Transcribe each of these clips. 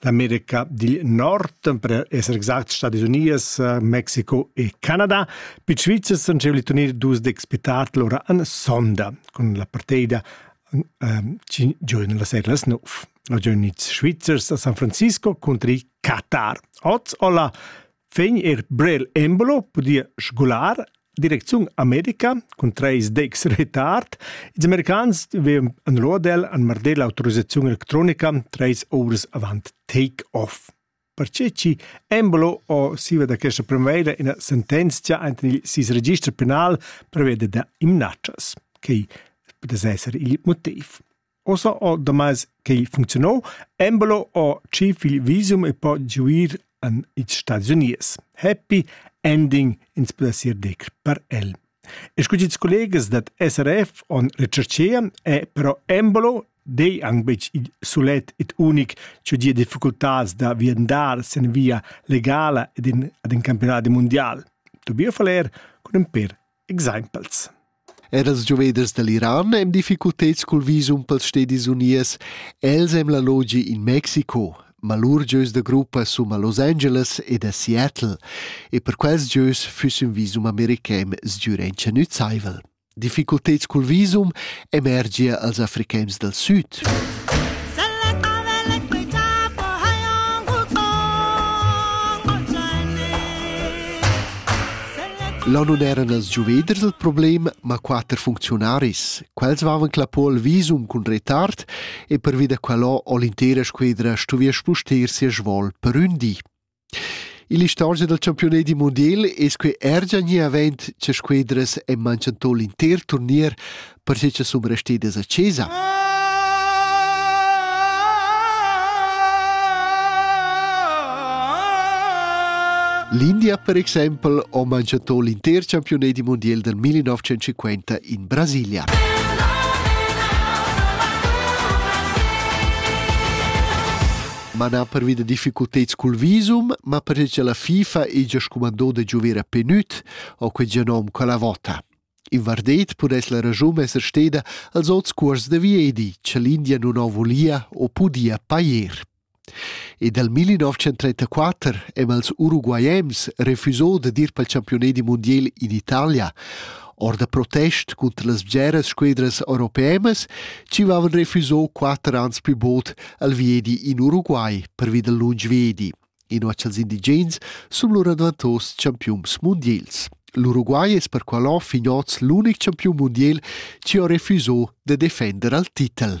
l'America dil Nord, per esser exact Stadis Unies, Mexiko e Canada. Pi Svizzers han giu turnir dus dec spetatl ora an sonda cun la parteida ehm, ci giovene la sera las 9. La giovniz Svizzers a San Francisco contri Qatar. Oz olla vegn er Brel Embolo pudia sgular direcziun America cun treis decs retard. Ils americans vevan anlodel an marder l'autorizzaziun electronica treis ovras avant take-off. Perche chi Embolo o siva da questa primavera ina sentenzia ante il sis registro penal prevede da imnatschas, che potesse esser il motiv. Ussa ho damais quai funcziunà embelo ho tschif il visum e po giuir in ils Stads Unius. Happy ending ins pudessia dir per el. E scu ils collegas dad SRF on recherchea è però embelo dei anc betg il sulet ed unic che dia difficultats da viandar sin via legala ed in, ad in campionat mundial. Tobias Faller cun in per Exaimpels Er els gioveders dall'Iran ein difficulteds cul visum pels Stedis Unies. Els hem la logi in Mexico, ma lur gieus da gruppa sum a Los Angeles ed a Seattle e per quels gieus füss ün visum american sgür entscenüzaivel. Difficulteds cul visum emergia als Africains dal Süd. Là non eran els giuveders il problem, ma quatter funcziunaris. Quels vavan clapol visum cun retard e pervi da quellò ho l'intera squedra stuvia spuster sia svol per ün di. Ill'istorgia dal campiunadi mundial es quai er già gnì avent cha squedras han manchantò l'inter turnier perche cha sun restidas a chesa. L'India per exempel ha manchantò l'inter campiunadi mundial dal 1950 in Brasilia. mana pervi da difficulteds cul visum, ma perché che la FIFA è già scumandò da giovere a Penut o quel genom quella vota. In vardet pudess la ragiun esser steda als ots cuors da Viedi, che l'India non ho volia o pudia pair. E dal 1934 hem als uruguaiems refusò da dir pel championet di mondial in Italia, or da protest cunter las bgeras squedras europeas ci vavan refuso quatter ans pü bod al viedi in Uruguay pervi dal lunsch viedi, inua cha'ls indigens sun lura dvantos champiuns mundiels. L'Uruguay es perqualò fin hoz l'unic champiun mundiel chi ho refuso da defender al titel.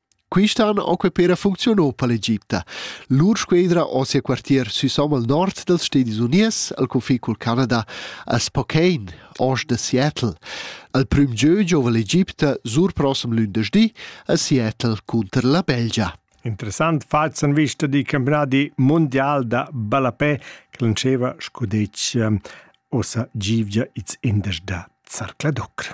Quista han occupeda funcziun o per l'Egipta. Lur squedra ho sia quartier sü Somme al nord dals Stedis Unies, al confin cul Canada, a Spokane, ost da Seattle. Al prüm gieu giova l'Egipta sur prossem lündeschdi a Seattle cunter la Belgia. Interessant fats han vista di campionati mondial da ballapè che lanceva scudetg ehm, ossa givgia its indes da Zarcladoc.